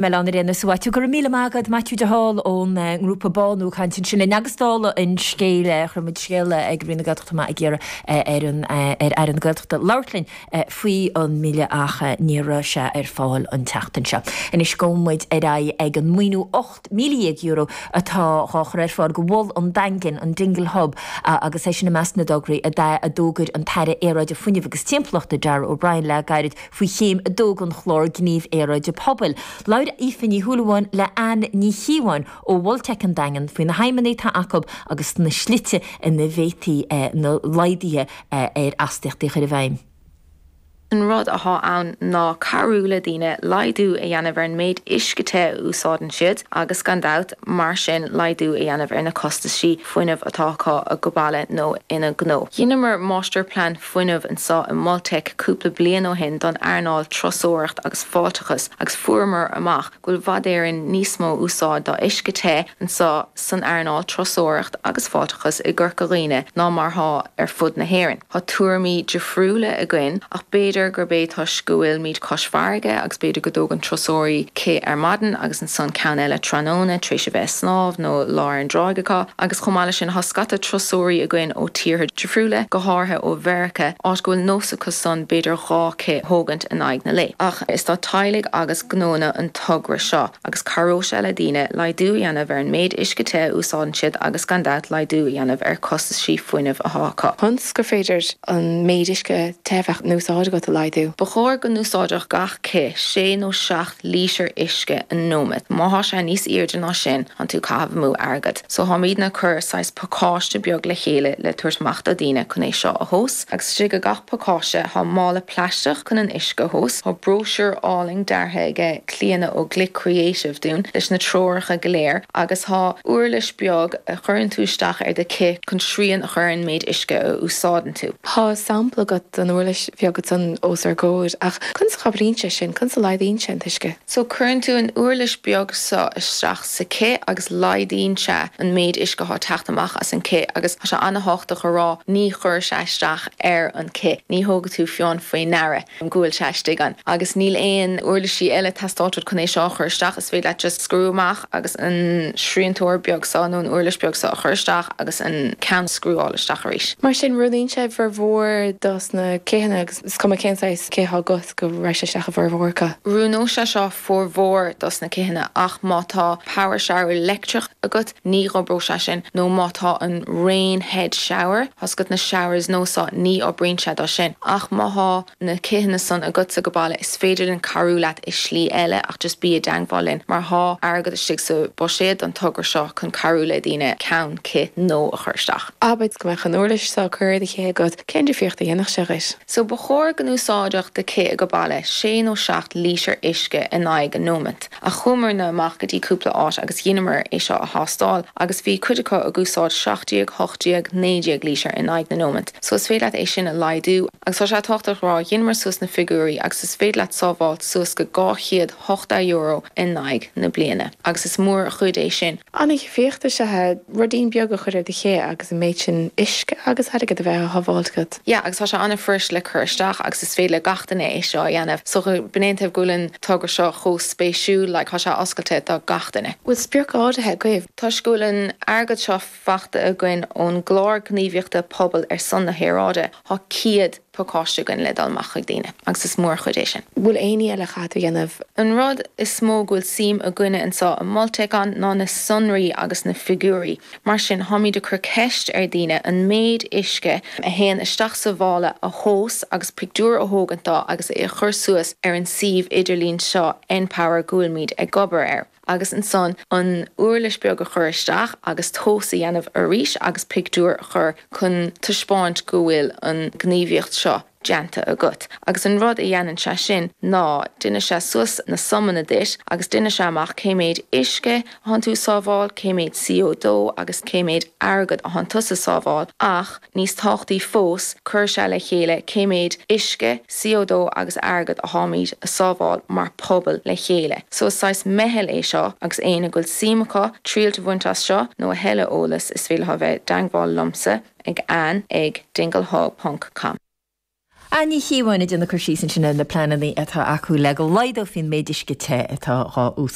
Mí na Éireann is uait. Go raibh míle maith agat Maitiú de Hál ón ngrúpa BÁNÚ ag caint ansin linn agus dála an scéil chuir muid scéal ag Roinn na Gaeltachta amach ag iarraidh ar Aire na Gaeltachta labhairt linn faoi an mBille ach níor raibh sé ar fáil an tseachtain seo. Anois gabhann muid ar aghaidh ag an maoiniú €18,000 atá dhá chur ar fáil do Mhol an Daingin, an Dingle Hub, agus é sin i measc na dtograí a d'fhógair an tAire Aeráide, Fuinnimh agus Timpeallachta, Darragh O'Brien le gairid. Faoi Chéim 2 den Chlár Gnímh Aeráide Pobail, labhair Aoife Ní Shúilleabháin le Ann Ní Chíobháin ó Mhol Teic an Daingin faoi na haidhmeanna atá acu agus na slite ina bhféadfaí na laghduithe ar astaíochtaí a chur i bhfeidhm. An rud atá ann ná cabhrú le daoine laghdú a dhéanamh ar an méid uisce te a úsáideann siad agus gan dabht mar sin laghdú a dhéanamh ar na costaisí fuinnimh atá acu age baile nó ina ngnó. Dheineamar máistirphlean fuinnimh anso i Mol Teic cúpla bliain ó shin don earnáil turasóireacht agus fáilteachais agus fuaireamar amach go bhfuil i bhfad Éireann níos mó úsáid do uisce te anso san earnáil turasóireacht agus fáilteachas i gCorca Dhuibhne ná mar thá ar fud na hÉireann. Thá tuairimí difriúla againn ach b'fhéidir gurb é toisc go bhfuilimíd cois farraige agus b'fhéidir go dtógann turasóirí cith ar maidin agus 'S an ceann eile tráthnóna tar éis a bheith ag snámh nó lá ar an dtráigh acu. Agus chomh maith leis sin thá scata turasóirí againn ó tíortha difriúla, go háirithe ó Mheirice, áit go bhfuil nós acu san b'fhéidir dhá cith a thógaint in aghaidh an lae. Ach is do teaghlaigh agus gnóanna an togra seo. Agus cabhróidh sé le daoine laghdú a dhéanamh ar an méid uisce te a úsáideann siad agus gan dabht laghdú a dhéanamh ar costaisí fuinnimh athá acu. Conas gur féidir an méid uisce te a bheadh in úsáid agat a laghdú. Ba chóir go n-úsáidfeadh gach cith sé nó seacht lítear uisce sa nóimeat. Má thá sé níos aoirde ná sin tánn tú ag caitheamh amú airgead. So tháimidne ag cur saghas pacáiste beag le chéile le tabhairt amach do daoine cun é seo a thomhas. Agus istigh i gach pacáiste thá mála plaisteach cun an uisce a thomhas. Thá bróisiúr álainn deartha aige Clíodhna ó Glic Creative dúinn leis na treoracha go léir agus thá uirlis beag a chuireann tú isteach ar do cith cun srian a chur ar an méid uisce a úsáideann tú. Thá sampla agat den uirlis bheag san os ár gcomhair ach Conas a chabhraíonn sé sin? Conas a laghdaíonn sé an t-uisce? So cuireann tú an uirlis beag so isteach sa cith agus laghdaíonn sé an méid uisce athá ag teacht amach as an cith agus tá sé ana-tháchtach a rá ní chuirfidh sé isteach ar an cith, ní thógfaidh tú fiú faoi ndeara go bhfuil sé istigh ann. Agus níl aon uirlisí eile ag teastáil uait chun é seo a chur isteach, is féidir leat just scriú amach agus an sriantóir beag so nó an uirlis beag so a chur isteach agus an ceann a scriúáil isteach arís. Mar sin, oiriúnaíonn sé formhór dos na citheanna agus. Is cuma cén saghas cith atá agat, go raghaidh sé isteach i bhformhór acu. Oiriúnóidh sé seo formhór dos na citheanna ach má tá power shower leictreach agat ní oibreoidh sé sin nó má tá an rain head shower tá a fhios agat na showers nua so ní oibríonn sé dó sin ach má thá na citheanna san agatsa age baile is féidir linn cabhrú leat i slí eile ach just bí i dteangmháil linn mar thá airgead istigh sa buiséad don togra seo chun cabhrú le daoine ceann cith nua a chur isteach. Abair go mbeadh an uirlis so curtha ar do chith agat Cén difríocht a dhéanfadh sé dhuit? So ba chóir go n-úsáidfeadh do chith age baile sé nó seacht lítear uisce in aghaidh an nóimint, ach chuamarna amach go dtí cúpla áit agus dheineamar é seo a thástáil agus bhí cuid acu ag úsáid seacht déag, ocht déag, naoi déag lítear in aghaidh na nóimint. So is féidir leat é sin a laghdú agus tá sé tábhachtach a rá dheineamar suas na figiúirí agus is féidir leat sábháilt suas go dhá chéad €80 in aghaidh na bliana agus is mór an chuid é sin. An difríocht seo, ruidín beag a chur ar do chith agus an méid sin uisce agus airgead a bheith á shábháilt agat. Yeah agus tá sé an-fhuirist le cur isteach agus is féidir le gach duine é seo a dhéanamh so sin é an taobh go bhfuil an togra seo chomh spéisiúil like tá sé oscailte do gach duine. Bhfuil sprioc áirithe agaibh? Toisc go bhfuil an airgead seo faighte againn ón gclár gníomhaíochta pobail ar son na haeráide, tá céad. pacáiste againn le dul amach chuig daoine agus is mór chuid é sin. Bhfuil éinní eile a chaithfidh tú a dhéanamh? An rud is mó go bhfuil suim againne anseo i Mol Teic ann ná na sonraí agus na figiúirí. Mar sin táimid ag cur ceist ar dhaoine an méid uisce a théann isteach sa mhála a thomhas agus pictiúr a thógaint dó agus é a chur suas ar an suíomh idirlín seo Enpower go bhfuilimid ag obair air. agus ansan an uirlis beag a chur isteach agus tomhas a dhéanamh arís agus pictiúr a chur chun taispeáint go bhfuil an ghníomhaíocht seo déanta agat. Agus an rud a dhéanann sé sin ná deineann sé suas na sumanna duit agus deineann sé amach cé méid uisce a thánn tú ag sábháil, cé méid CO2 agus cé méid airgead a thánn tusa ag sábháil ach. Níos tábhachtaí fós, cuireann sé le chéile cé méid uisce, CO2 agus airgead a tháimid ag sábháil mar pobal le chéile. So is saghas meitheal é seo agus éinne go bhfuil suim acu triailt a bhaint as seo nó a thuilleadh eolas is féidir leo a bheith i dteangmháil liomsa ag Ann ag dinglehub ponc com. Ann Ní Chíobháin ag déanamh cur síos ansin ar na pleananna atá acu le go laghdófaí an méid uisce te atá dhá